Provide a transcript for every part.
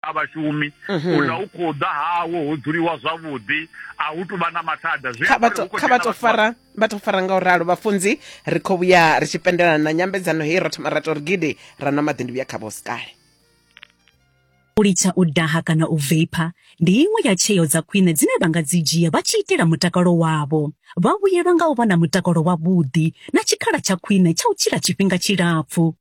a vhashumi mhm. uḽa u khou ḓa hawo ho dzuliwa zwavhuḓi a hu tu vha na mathada kha vha to fara vha to fara nga u ralo vhafunzi ri khou vhuya ri tshi pendelana na nyambedzano heyi ro thoma ra to ri gidi ra nwa maḓi ndi vhuya kha vhosikale u litsha u daha kana u veipa ndi iṅwe ya tsheo dza khwine dzine vha nga dzi dzhia vha tshi itela mutakalo wavho vha vhuyelwa nga u vha na mutakalo wavhuḓi na tshikhala tsha khwine tsha u tshila tshifhinga tshilapfu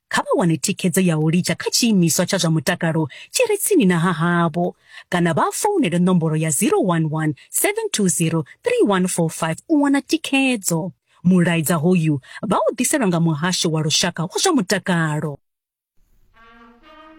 kha vha wane thikhedzo ya u litsha kha tshiimiswa tsha zwa mutakalo tshi re tsini na ha havho kana vha founele nomboro ya 011 720 3145 u wana thikhedzo. Mulaedza hoyu vha u ḓiselwa nga Muhasho wa Lushaka wa zwa Mutakalo.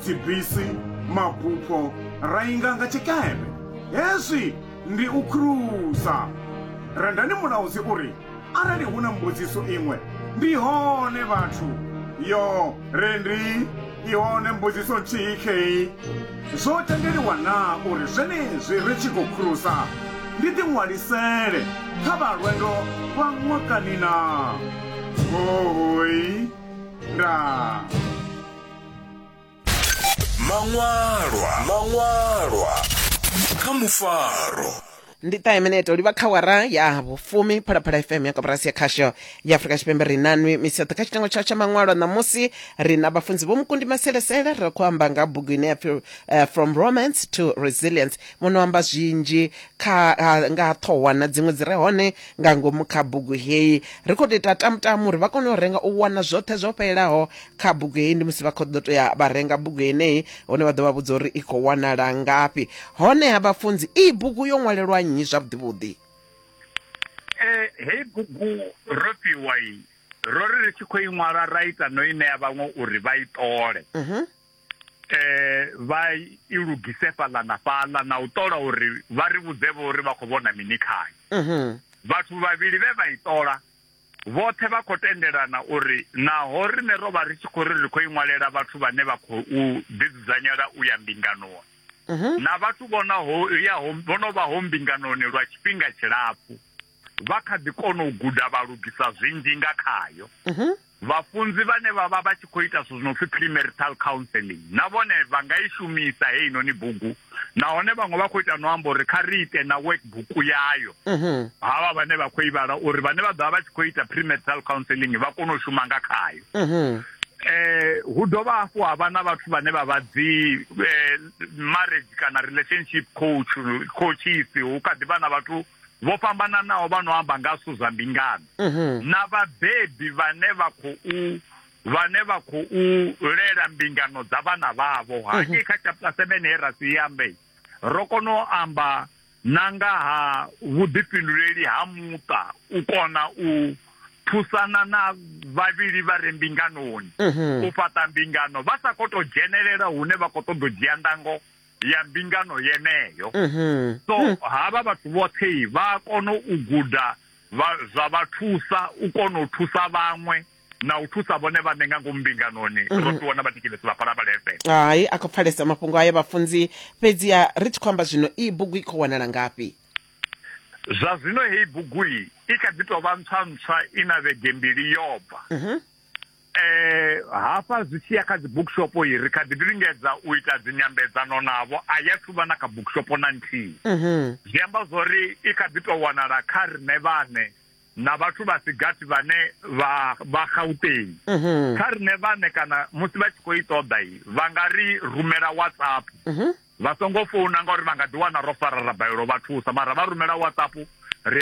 dzibisi, mabupho ra inga nga tshikepe. Hezwi ndi u khulusa. Rendani mulaudzi u ri, Arali hu na mbudziso iṅwe, ndi hone vhathu. Yo, Rendi, i hone mbudziso nthihi khei. Zwo tendeliwa naa uri zwenezwi ri tshi khou khulusa ndi ḓiṅwalisele kha vha lwendo lwa ṅwakani naa? Hooi. Ndaa. maṅwalwa maṅwalwa kha mufaro ndi ṱahe minete u livha kha wara ya vhufumi phalaphala fm ya koporasi ya khasho ya afurika tshipembe ri na nwi misi yoṱhe kha tshitengo tshayo tsha maṅwalo ṋamusi ri na vhafunzi vho mukundi maselesele ri khou amba nga bugu ine ya pfi eh, from romance to resilience muno amba zwinzhi kha ha- nga ha ṱhohwa na dziṅwe dzi re hone nga ngomu kha bugu heyi ri khou tou ita tamutamu uri vha kone u renga u wana zwoṱhe zwo fhelelaho kha bugu heyi ndi musi vha khou ḓo toya vha renga bugu yeneyi hone vha ḓo vha vhudza uri i khou wanala ngafhi honeha vhafunzi iyi bugu yo ṅwalelwa nnyi zwavhuḓivhuḓi eh, heyi bugu ro fhiwa i ro ri ri tshi khou i ṅwala ra ita no i ṋea vhaṅwe uri vha i ṱole mhm. eh, vha i lugise fhaḽa na fhaḽa na u ṱola uri vha ri vhudzevho uri vha khou vhona mini khayo mhm. vhathu vhavhili vhe vha i ṱola Vhoṱhe vha khou tendelana uri naho riṋe ro vha ri tshi khou ri ri khou i ṅwalela vhathu vhane vha khou ḓidzudzanyela u ya mbinganoni na vhathu vho no yaho vho no vhaho mbinganoni lwa tshifhinga tshilapfu, vha kha ḓi kona u guda vha lugisa zwinzhi nga khayo. Vhafunzi vhane vha vha vha tshi khou ita zwithu zwi no pfi premarital counselling na vhone vha nga i shumisa heinoni bugu nahone vhaṅwe vha khou ita no amba uri kha ri ite na workbook yayo havha vhane vha khou i vhala uri vhane vha ḓo vha vha tshi khou ita premarital counselling vha kone u shuma nga khayo. Eh, hu dovha hafhu ha vha na vhathu vhane vha vha dzi eh, marriage kana relationship coach coaches hu kha ḓi vha na vhathu vho fhambananaho vha no amba nga zwithu zwa mbingano na vhabebi vhane vha khou vhane vha khou lela mbingano dza vhana vhavho hangei kha chapter 7 he ra si ambe ro kona u amba na nga ha vhuḓifhinduleli ha muṱa u kona u thusana na vhavhili vha re mbinganoni u fhaṱa mbingano vha sa khou tou dzhenelela hune vha khou ṱoḓa u dzhia ndango ya mbingano yeneyo mhm. so mm. havha vhathu vhoṱhe vha kona u guda zwa vha thusa u kona u thusa vhaṅwe na u thusa vhone vhaṋe nga ngomu mbinganoni mm -hmm. ro ṱuwa na vhatikelesi vha fhala vhalefhe hai a khou pfalesa mafhungo ayo vhafunzi fhedziha ri tshi khou amba zwino iyi bugu i khou wanala ngafhi zwa zwino heyi bugu i i kha ḓi tou vha ntswa ntswa i na vhege mbili yobva mm -hmm. Eh, hafha zwi tshi ya kha dzi bookshop yi ri kha ḓi lingedza u ita dzi nyambedzano navho a ya thuvha na kha bookshop na nthihi mhm. zwi amba zwori i kha ḓi to wanala kha rine vhane na vhathu vha sigathi vhane vha vha gauteng mhm. kha rine vhane kana musi vha tshi khou i ṱoḓa i vha nga ri rumela whatsapp mhm. vha songo founa ngauri vha nga ḓi wana ro farara balelo vha thusa mara vha rumela whatsapp